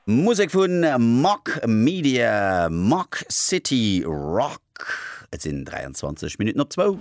Musek vu Mach Media, Mach City Rock. Et sinn 23 Minutten op zwou.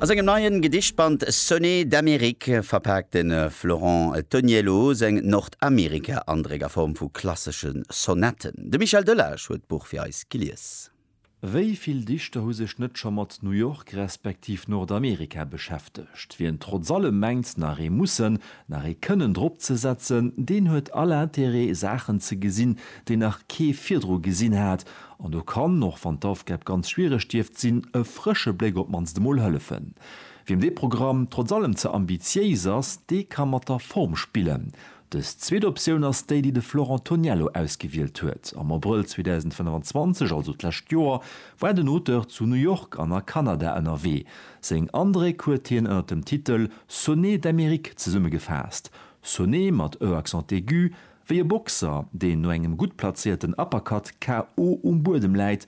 A sengem neien Gedichtband Sonnets d'Amérique verpaakt de Florent Toniello seng Nordamerika-Andréck a Form vu klassesche Sonetten. De Michel Delage huet d'Buch fir eis gelies. Wéi vill Dichter hu sech net scho mat New York respektiv Nordamerika beschäftegt? Wien trotz allem mengt, nach ee Mussen, nach ee Kënnen drop ze setzen, deen huet all Interêt, Saachen ze gesinn, déi nach kee virdru gesinn hat. An do kann, och wann d'Aufgab ganz schwiereg dierft sinn, e frësche Bléck op d'mannst emol hëllefen. Wiem dee Programm trotz allem ze ambitiéis ass, dee ka mat der Form spillen. Dës zweet Optioun ass déi, déi de Florent Toniello ausgewielt huet. Am Abrëll 2025, also d'lescht Joer, war den Auteur zu New York an a Kanada ënnerwee. Seng Andréck huet hien ënner dem Titel Sonnets d'Amérique zesummegefaasst, Sonnet mat e accent aigu, wéi e Boxer, deen no engem gutt plazéierten Uppercut KO um Buedem läit,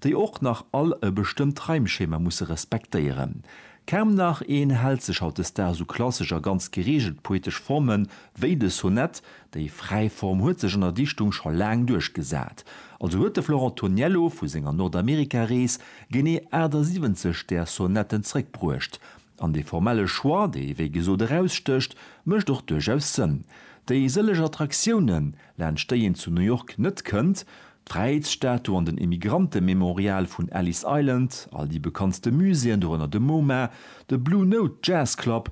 déi och nach all e bestëmmt Reimschema musse respektéieren. Kaum nach een hält sech hautdesdaags u klassesch a ganz gereegelt poetesch Forme wéi de Sonett. Déi fräi Form huet sech an der Dichtung scho laang duerchgesat. Also huet de Florent Toniello vu senger Nordamerika-Rees genee 78 där Sonetten zréckbruecht. An dee formelle Choix, dee wéi gesot erausstécht, mécht och duerchaus Sënn. Déi sëlleg Attraktiounen, laanscht déi een zu New York net kënnt, d'Fräiheetsstatu an den Emigrantememorial vun Ellis Island, all déi bekanntste Muséeën, dorënner de MoMA, de Blue Note Jazz Club,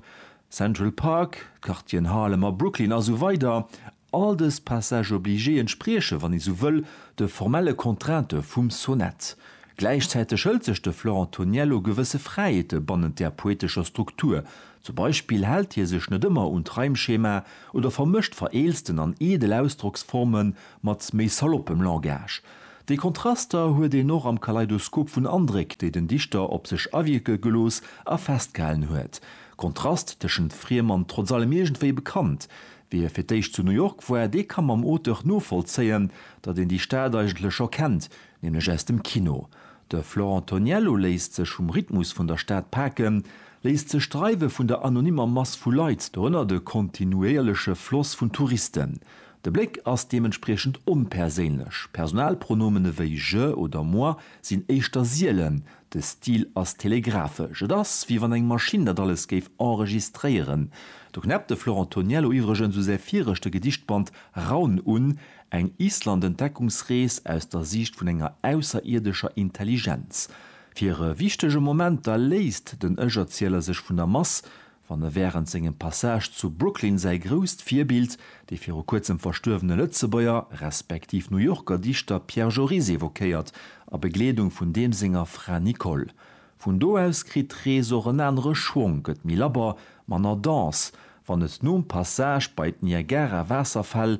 Central Park, d'Quartieren Harlem a Brooklyn a sou weider, all dës Passages obligés entsprieche, wann ee sou wëll, de formelle Contrainte vum Sonett. Gläichzäiteg hëlt sech de Florent Toniello gewësse Fräiheete bannent där poetescher Struktur, Zum Beispill hält hie sech net ëmmer un d'Reimschema oder vermëscht vereelzten an eedel Ausdrocksforme mat méi saloppem Langage. Déi Kontraster huet een och am Kaleidoskop vun Andréck, déi den Dichter op sech awierke gelooss a festgehalen huet. Kontrast tëschent friem an trotz allem iergendwéi bekannt. Wie fir d'éischt zu New York war, dee ka mam Auteur novollzéien, datt een déi Stad eigentlech scho kennt, nämlech aus dem Kino. De Florent Toniello léisst sech vum Rhythmus vun der Stad paken, Léisst sech d'Dreiwe vun der anonymer Mass vu Leit dorënner de kontinuéierleche Floss vun Touristen? De Bléck ass deementspriechend onperséinlech, Personalpronomene wéi je oder moi sinn éischter sielen, de Stil ass telegraphesch, et ass wéi wann eng Maschinn dat alles géif enregistréieren. Do knäppt de Florent Toniello iwwregens u säi viregte Gedichtband Raun un, eng Island-Entdeckungsrees aus der Siicht vun enger ausserierdescher Intelligenz. Fir e wichtege Moment da léisst den Ech-Erzieler sech vun der Mass, wann e wärend sengem Passage zu Brooklyn säi grousst Virbild, dee viru kuerzem verstuerwene Lëtzebuerger, respektiv New Yorker Dichter Pierre Joris evoquéiert, a Begleedung vun deem senger Fra Nicole. Vun do aus kritt d'Rees och en anere Schwong, gëtt méi labber, manner dense, wann et nom Passage bei d'Niagara-Waasserfäll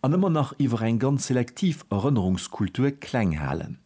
an ëmmer nach iwwer eng ganz selektiv Erënnerungskultur kleng halen.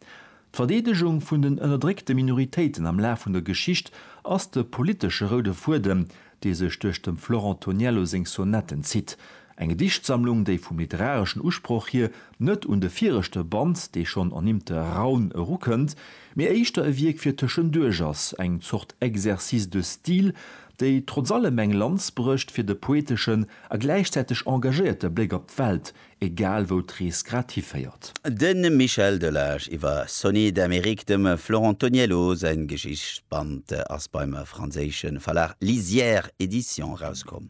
D'Verdeedegung vun den ënnerdréckte Minoritéiten am Laf vun der Geschicht ass de politesche roude Fuedem, dee sech duerch dem Florent Toniello seng Sonetten zitt. Eng Gedichtsammlung, déi vum literareschen Usproch hier net un de viregte Band, dee schonn ernimmte Raun, erukënnt, mee éischter e Wierk fir tëschenduerch ass, eng Zort Exercice de style, déi trotz allem eng Lanz brécht fir de poeteschen a gläichzäiteg engagéierte Bléck op d'Welt, egal wou d'Rees grad hiféiert. De Michel Delage iwwer Sony d'Amérique, dem Florent Toniello säin Geschichtsband, ass beim franséische Verlag Lisière Edition erauskomm.